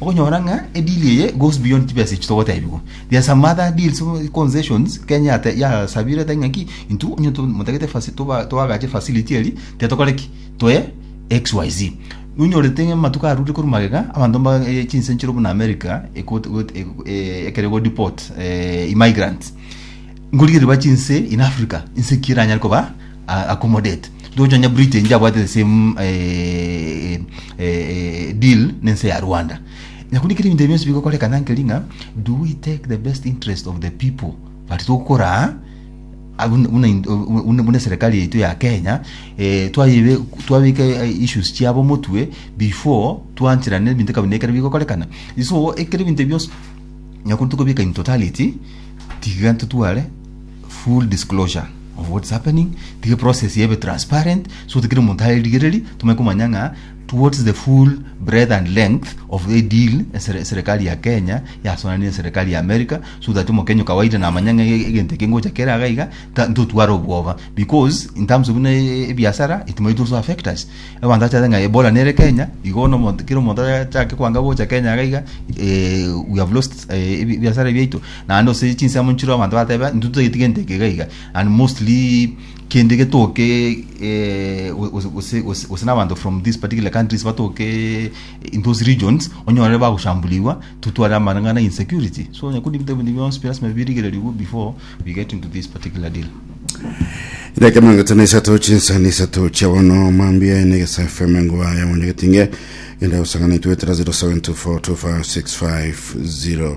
Okonyora ng'a edeal eye goes beyond chibesa echi togotebigwa. There are some other deals, concessions, Kenya yate- yasabire ete ng'a ki, intwe onye to- motagete faci- toba- toagache facility eri, tiga tokore ki, toe XYZ. Nonyorete ng'a amatuko arure korwa magega, abanto mba eh, chinse nchire buna America, ekot- got- eh, eh, ekero go deport eh, emigrants. Nkorigereria ba chinse in Africa, inse ki eranyare koba a- accommodate ndoche onye britain njabwate the same eh, eh, eh, deal nense ya rwanda nakuni kiri ebinto bionsi bigokorekana nkeri ng'a do we take the best interest of the people but tokora abuna- buna in- buna- buna serikali yaitu ya kenya eh, twaibe- twabeka eh, issues chiabo motwe before twancherane ebinto kabinda ekero bigokorekana so ekero ebinto bionsi nyakuntukobika in totality tiga ntotware Full disclosure of what's happening, tige process ebe transparent so that kira omonto are rigereri tomanye komanya ng'a what's the full breadth and length of the deal esere- serikali ya Kenya yasonanire na serikali ya America so that omokenya o kawaida namanya ng'a e- egento eke ngocha kere aga iga ta- ntotware obwoba because in terms of buna e- ebiasara it might also affect us abanto bachate ng'a Ebola nere Kenya igo bono omonto kera omonto achake kwanga gocha Kenya iga eh, we have lost eh, ebi- ebiasara biaito Naende ase chinsemo nchire abanto bateba intwe totagete gento eke iga iga and mostly kende getoke eh, gose- gose gose- gose n'abanto from these particular countries batoke eh, in those regions onyorere bagoshambuligwa totware amarang'ana insecurity so nyakundi ebinto ebinto bionsi pi lasima birigererigwe before we get into this particular deal Idakika mirongo itano isato chinsa ni isato chia bono mambia ene gesa FM engwa ya mwenye getinge genda gusangana itwe tera 0724256505